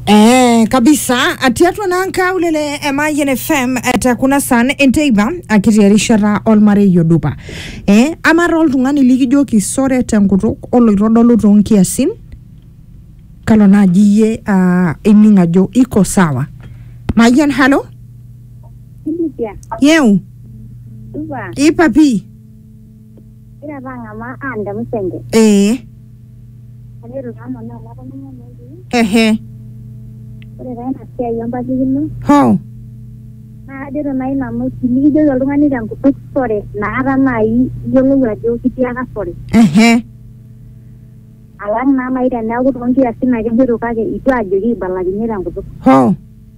Eh, kabisa atiatwa nanka ulele emayen fm etakuna san enteiba akiti erishata olmarei odupa eh, amara oltung'ani likijoki sore tenkutuk oloitodolu toonkiasin kalo naaji iyie ah, ining ajo iko sawa mayian halo India, yeu Dubai, ipapi Egira apa ang'amaa aanda musenge. ee Kake eitu taa amanaa amu atoning'o enetii. ehe Ore taa ina siai empatikino hoo naa kajoito naaji nanu tinikijoki oltung'ani tenkutuk sore inakata naaji iyiolou ajo kitiaka sore. ehe Alang naa naaji teneeku toonkiasin ake ejoito kake eitu aajoki aibalakinyie tenkutuk. hoo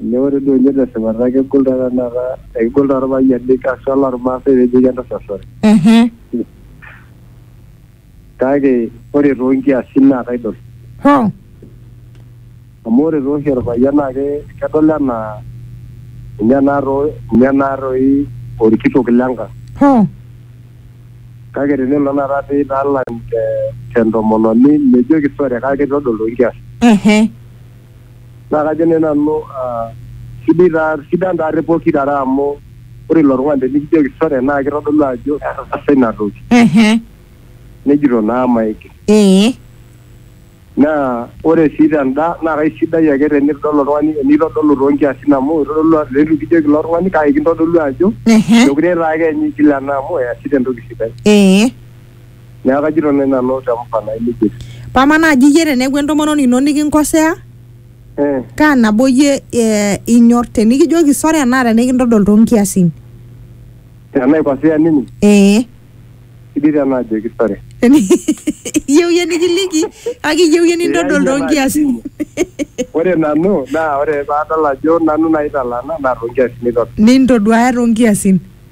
Ajo ore duo ninye tesipata kegol taa tenakata ekegol taa irpayiani haswa loo irmaasai peejoki entasat sore. Kake ore too nkiasin naa kaidol. Amu ore taa oshi orpayian naa kedol enaa ninye naa toi ninye naa toi orkitok le nkang. Kake tenelo tenakata pee italang te ntomononi mijoki sore kake itodol too nkiasin. Naa kajo ninye nanu sidai taa sidan taa te pooki are amu ore ilo tung'ani tenikijoki sore naa kitodolu ajo etaasa ina toki Ehe. nejito naa maigil. Ee. Naa ore sii tenda naa kaisidai ake tenitodol oltung'ani enitodolu too nkiasin amu itodolu ajo leitu kijoki ilo tung'ani kake kintodolu ajo Ehe. mekure taake ninye igil ena amu easita entoki sidai. Ee. Neeku kajito nai nanu te mfano ai lijito. Paa amaa naaji iyie teneeku entomononi ino nikinkosea, Eh, kaa nabo iyie eh, inyor tenikijoki sore enaa tenikintodol too nkiasin? tenaikosea ninye, Ee. sidai tena ajoki sore. iyieu iyie nikiliki kake iyieu iyie nintodol too nkiasin. Ore nanu naa ore paadol ajo nanu naitalana naa too nkiasin aitodol. Nintoduaya too nkiasin.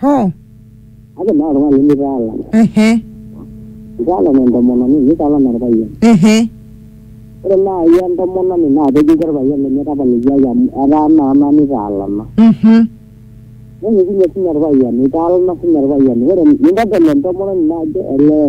hoo Ake naa oltung'ani limitaala. ehe Itaala naa entomononi, nitaala naa orpayian. ehe Ore naaji entomononi naa kejoki orpayian lenye tapalikiaki amu etaa naa nanu itaalana. mhm Nejoki ninye sinye orpayian itaalana sinye orpayian. Ore nintodol entomononi naa ajo olee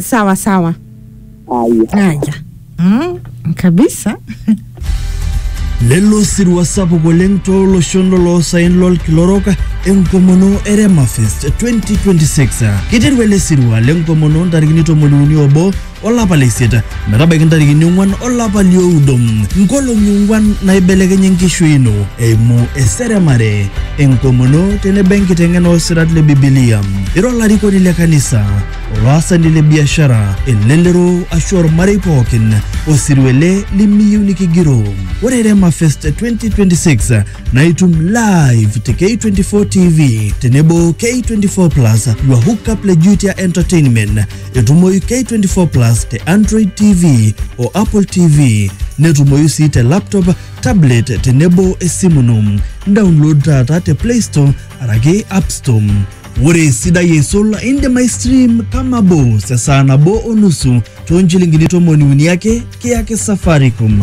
sawa sawa Haya. haya mm, kabisa lelo sirua sapuk oleng tooloshon loloosaen lolkila orok enkomono e remafest 2026 kiteru ele sirua lenkomono ntarikini tomoniuni obo olapa le isiet metabaiki ntarikini ong'uan olapa lioudo nkolong'i ong'uan naibelekenye enkishui ino eimu eseremare enkomono tenebo enkiteng'ena oosirat le bibilia ira olarikoni le kanisa olaasani le biashara elelero ashu ormarei pookin osirua ele limiyieu nikigiroo ore rema fest 2026 naa itum live te k24 tv tenebo k24 plus your hookup le jutia entertainment Etumoyu K24 Plus te Android TV o Apple TV. Netumoyu sii te laptop, tablet tenebo esimu ino. Download taata te Play Store araki App Store. Ore esidai eisul indim aistream kama bos esaa nabo o nusu too nchilingini tomoni uni ake kiyaki Safaricom.